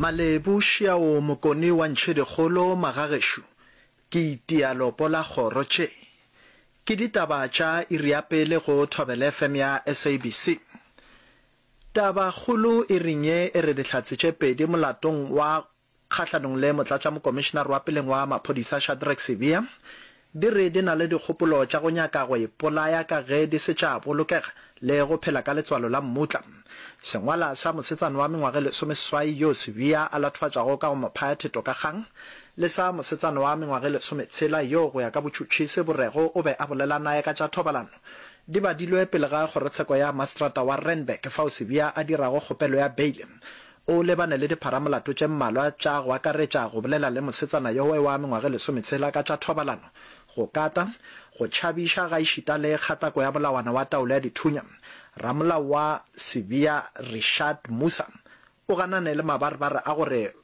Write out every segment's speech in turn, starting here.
Malebu šiao mokoni wa ntšhedikgolo magagešo ke itia lopo la kgoro tše ke ditaba tša iri ya pele go thobelfm ya sabc taba kgolo iring ye e re dihlatse tše pedi molatong wa kgahlanong le motlatšamokomišenare wa peleng wa maphodisa Shadrack Sibiya, di re di na le dikgopolo tša go nyaka go ipolaya ka ge di se tša bolokega le go phela ka letswalo la mmutla. Sengwala sa mosetsana wa mengwaga e lesomeseswai yoo Sibiya a latofatšago ka go mo phaya theto ka kgang le sa mosetsana wa mengwaga e lesometshela yoo go ya ka botšhutšhisi bo rego o be a bolela naye ka tša thobalano di badilwe pele ga kgorotsheko ya maseterata wa Randburg fao Sibiya a dirago kgopelo ya beile O lebane le dipharamolato tše mmalwa tša go akaretša go bolela le mosetsana yo oe wa mengwaga e lesometshela ka tša thobalano, go kata, go tšhabiša gaešita le kgatako ya molawana wa taolo ya dithunya. Ramolao wa Sevilla Rishad Musa o ganane le mabarebare a gore ba.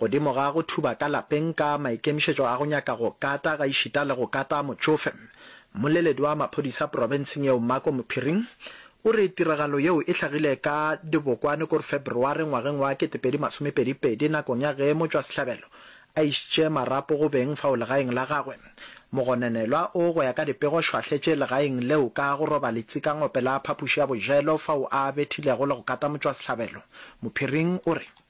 Godimo ga go thuba ka lapeng ka maikemišetšo a go nyaka go kata gaešita le go kata motšofe, mmoleledi wa maphodisa profenseng yeo Marco Mophiring o re tiragalo yeo e hlagile ka dibokwane kor Feberware ngwageng wa kete pedi masome pedi pedi nakong ya ge motšwasehlabelo a išitše marapo go beng fao legaeng la gagwe mogononelwa o go ya ka dipego šwahletše legaeng leo ka go roba letsikangope la phapoši ya bojelo fao a bethilego le go kata motšwasehlabelo Mophiring o re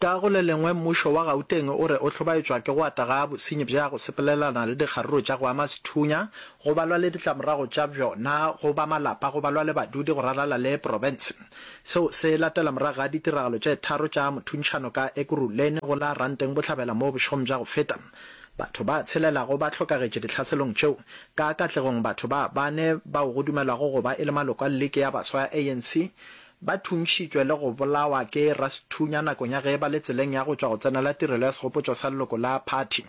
Ka go le lengwe, mmušo wa Gauteng o re o hlobaetšwa ke go ata ga bosenyi bja go sepelelana le dikgaruru tša go ama sethunya, go balwa le ditlamorago tša bjona go ba malapa, go balwa le badudi go ralala le profense. Seo se latela morago ga ditiragalo tše tharo tša mothuntšhano ka Ekurhuleni go la Ranteng Bohlabela moo bošegong bja go feta batho ba tshelelago ba hlokagetše dihlaselong tšeo, ka katlegong batho ba bane bao go dumelwago go ba e le maloko a liki ya baswa ya ANC Ba thuntšhitšwe le go bolawa ke Rasthunya nakong ya ge e ba le tseleng ya go tšwa go tsenela tirelo ya segopotšo sa leloko la phathi,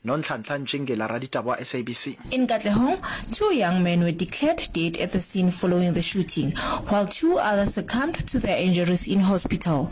Nonhlanhla Ntšingila, raditaba wa SABC. In Katlehong, two young men were declared dead at the scene following the shooting, while two others succumbed to their injuries in hospital.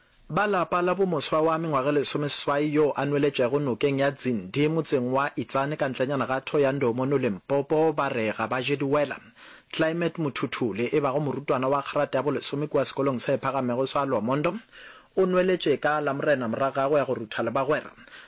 Ba lapa la bomoswa wa mengwaga lesomeswai yo a nweletšego nokeng ya Dzindi motseng wa Itsane ka ntlenyana ga Thohoyandou mono Limpopo ba re ga ba je diwela. Climate Muthuthuli e bago morutwana wa kgerata ya bolesome kua sekolong se phagamego sa Lwamondo o nweletše ka Lamorena morago ga go ya go rutha le bagwera.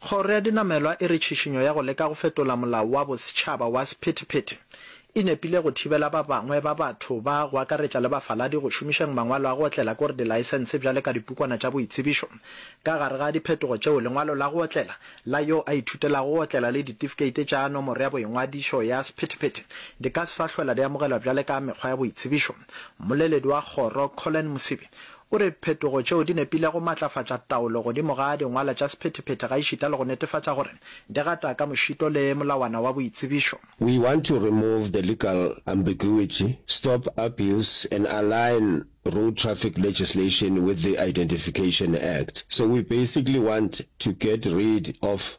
Kgoro ya Dinamelwa e re tšhišinyo ya go leka go fetola molao wa bosetšhaba wa sephethephethe e nepile go thibela ba bangwe ba batho ba go akaretša le bafaladi go šomišeng mangwalo a go otlela kore dilaesense bjale ka dipukwana tša boitsebišo ka gare ga diphetogo tšeo lengwalo la go otlela la yo a ithutelago go otlela le ditifikeite tša nomoro ya boingwadišo ya sephethephethe di ka se sa hlwela di amogelwa bjale ka mekgwa ya boitsebišo. Mmoleledi wa kgoro, Collen Mosibi, o re diphetogo tšeo di nepilego go matlafatša taolo godimo ga dingwala tša sephethephethe gaešita le go netefatša gore di gata ka mošito le molawana wa boitsebišo. We want to remove the legal ambiguity, stop abuse and align road traffic legislation with the Identification Act. So we basically want to get rid of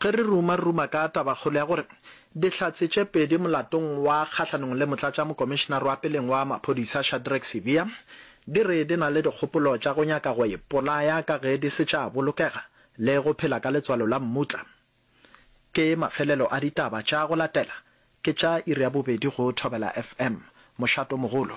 Ge re ruma-ruma ka tabakgolo ya gore Dihlatse tše pedi molatong wa kgahlanong le Motlatšamokomišenare wa Peleng wa Maphodisa Shadrack Sibiya di re di na le dikgopolo tša go nyaka go ipolaya ka ge di se tša bolokega le go phela ka letswalo la mmutla, ke mafelelo a ditaba tša go latela, ke tša iri ya bobedi go Thobela FM. Mošato mogolo.